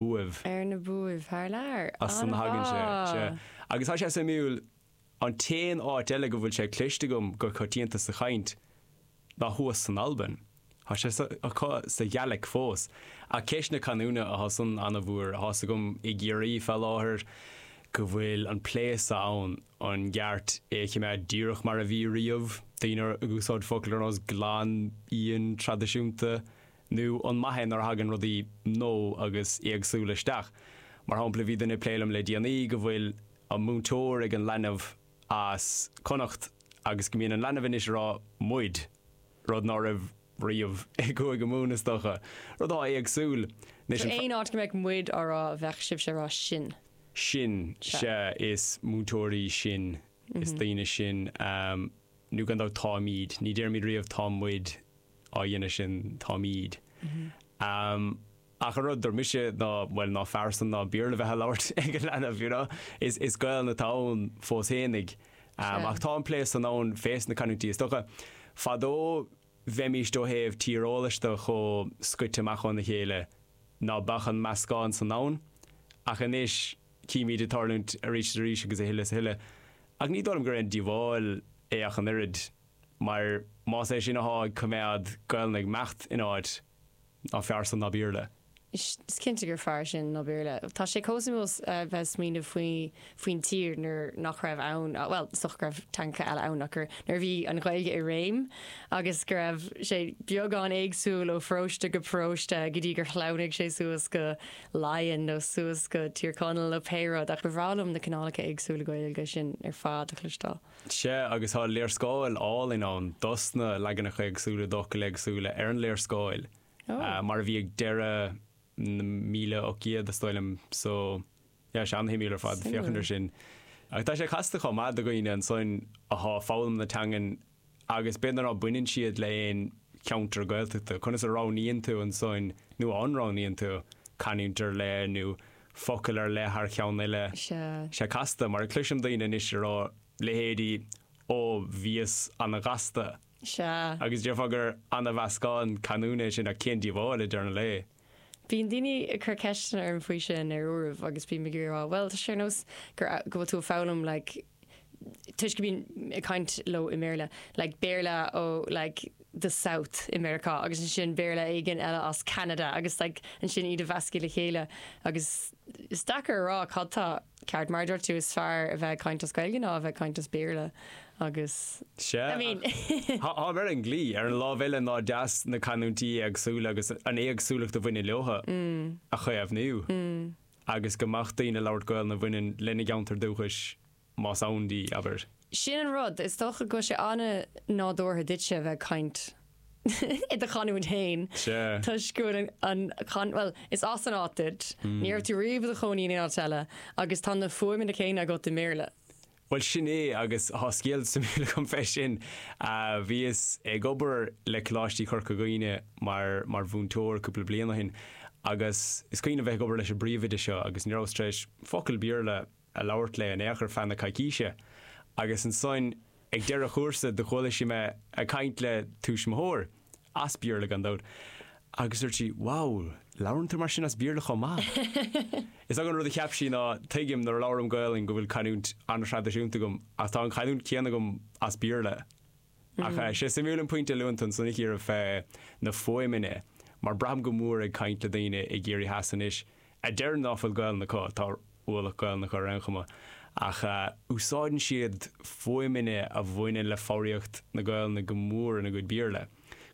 uaibh, ar na buaibh thar lear. As san a thagann sé, sea. An-mhaith! Agus tá sé suimiúil, an t-aon áit eile go bhfuil sé cloiste agam go coitianta sa chaint ná thuas san Albain. Tá sé acu sa Ghaeilic fós. Ach ceist na canúna atá san an-mhór. Tá's agam i gCiarraí fé láthair go bhfuil an plé so ann, an gceart é a chimeád díreach mar a bhí riamh, daoine ag úsáid focal ar nós glan, íon, traidisiúnta, nó an maith é nuair a thagann rudaí nua agus éagsúla isteach. Mar shampla, bhí duine ag plé liom le déanaí go bhfuil an múinteoir ag an leanbh as Connacht agus go mbíonn an leanbh anois ag rá 'muid', rud ná raibh riamh i gCúige Mumhan is dócha. Rud atá éagsúil. Anois, So aon áit go mbeadh 'muid' á rá bheadh sibhse ag rá 'sinn'. sinn, Sea. sea, is múinteoirí sinn, is daoine sinn. Nó gan dabht 'táimid', ní déarfaimid riamh 'tá muid'. á dhéanamh sin atáimid. Ach an rud dar mise ná, bhuel, ná fearr san ná Béarla a bheith á labhairt ag a leanbh, you know. Is Gaelainn atá ann fós féinig. Ach tá an plé san ann fés na canúintí is dócha. Fadó bheimíst ó thaobh tíreolais de chomh scoite amach óna chéile ná beadh an meascán san ann. Ach anois címid é ag tarlúint arís is arís agus a thuille is a thuille. Ach ní dóigh liom gur aon díobháil é ach an oiread. mar más é sin athá ag coimeád Gaelainn ag imeacht in áit ná fearr san ná Béarla. Is cinnte gur fearr sin ná Béarla. Tá sé chomh suimiúil bheith ag smaoineamh faoi faoin tír nuair nach raibh ann, bhuel, is dócha go raibh teangacha eile ann ach gur, nuair a bhí an Ghaeilge i réim agus go raibh sé beagán éagsúil ó pharóiste go paróiste go dtí gur shleamhnaigh sé suas go Laighin nó suas go Tír Chonaill nó pé rud ach ba bhreá liom na cineálacha éagsúla Gaeilge sin ar fad a chloisteáil. Sea, agus tá léarscáil álainn ann dos na leaganacha éagsúla d'fhocail éagsúla ar an léarscáil, mar a bhí ag deireadh na míle ocht gcéad, is dóigh liom. So, yeah, sea, an-shuimiúil ar fad féachaint ar sin. Ach tá sé casta chomh maith do dhaoine ansoin atá ag foghlaim na teangan agus b'fhéidir ná baineann siad le haon cheantar Gaeltachta, conas a roghnaíonn tú ansoin, nó an roghnaíonn tú, canúint ar leith nó focal ar leith thar cheann eile. Tá sé casta, mar a chloisim daoine anois ag rá, leithéidí Ó, bhíos an-ghasta. Sea, agus déarfá gur ana-mheascán canúna é sin ach cén díobháil, i deireadh an lae? Bíonn daoine ag cur ceisteanna orm faoi sin ar uairibh agus bím ag iarraidh a rá, bhuel, tá sé ar nós gur, go bhfuil tú ag foghlaim like, toisc go mbínn ag caint leo i mBéarla, like Béarla ó like the South i Meiriceá agus ansin Béarla éigin eile as Ceanada agus like ansin iad a mheascadh le chéile agus is deacair a rá cad tá ceart mar a dúirt tú is fearr a bheith ag caint as Gaeilge ná a bheith ag caint as Béarla agus I mean Tá mar an gcéanna ar an lámh eile nach deas na canúintí éagsúla agus an éagsúlacht a bhaineann leotha mm. a chaomhnú. Mm. agus go mbeadh daoine ag labhairt Gaolainne a bhaineann lena gceantar dúchais, más ann di, abair. Sin an rud, is dócha go bhfuil sé an-nádúrtha duitse a bheith ag caint i do chanúint fhéin toisc go bhfuil an, bhuel, is as an áit duit, ní raibh tú riamh i do chónaí in aon áit eile agus tá na fuaimeanna céanna agat i mBéarla. Bhuel sin é agus thá scéal suimiúil agam fé sin. Bhíos ag obair le Coláistí Chorca Dhuibhne mar mar mhúinteoir cúpla bliain ó shin agus is cuimhin liom bheith ag obair leis an bpríomhoide seo agus ní rabhas tar éis focal Béarla a labhairt léi in aon chor ar feadh na coicíse agus ansoin ag deireadh an chúrsa do chuala sí mé ag caint le tuismitheoir as Béarla gan dabht, agus dúirt sí, Wow, labhrann tú mar sin as Béarla chomh maith! Is dócha an rud a cheap sí ná, tuigim nuair a labhraim Gaolainn go bhfuil canúint an-thraidisiúnta agam, ach tá an chanúint chéanna agam as Béarla. Ach eh, tá sé suimiúil an pointe a luann tú ansan a Chiara fé na fuaimeanna, mar braithim go mór ag caint le daoine i gCiarraí Theas anois, a deireann ná fuil Gaolainn acu, tá ualach Gaolainn acu ar aon chuma, ach úsáideann siad fuaimeanna a bhaineann le foghraíocht na Gaolainne go mór ina gcuid Béarla.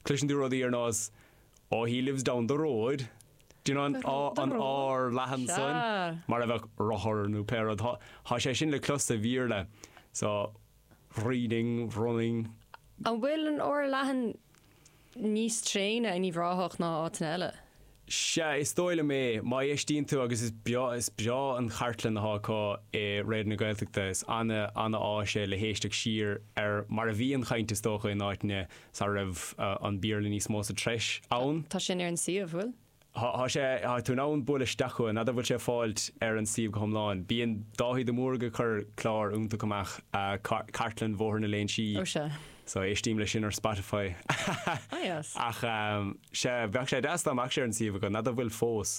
Cloiseann tú rudaí ar nós Oh he lives down the road, do you know an r an r leathan san, mar a bheadh rothar nó pé rud. Thá sé sin le clos sa Bhéarla, so reading, running. An bhfuil an r leathan níos tréine in Uíbh Ráthach ná áiteanna eile? Sea, is dóigh liom é. Má éistíonn tú, agus is breá, is breá an chartlann atá acu i Raidió na Gaeltachta. Is ana, ana áis é le héisteacht siar ar mar a bhí an chaint is dócha in áiteanna sara raibh an Béarla níos mó sa treis ann. Tá sin ar an suíomh, bhfuil? Tá sé, tá tú in ann bualadh isteach chugainn, n'fheadar bhfuil sé ar fáilt ar an suíomh go hiomlán. Bíonn Dáithí de Mórdha ag cur clár iontach amach, Cartlann Bhóthar na Léinsí. Ó sea. So éistím leis sin ar Spotify. Ah yes. Ach sea, bheadh sé deas dá mbeadh sé ar an suíomh agat, n'fheadar bhfuil fós.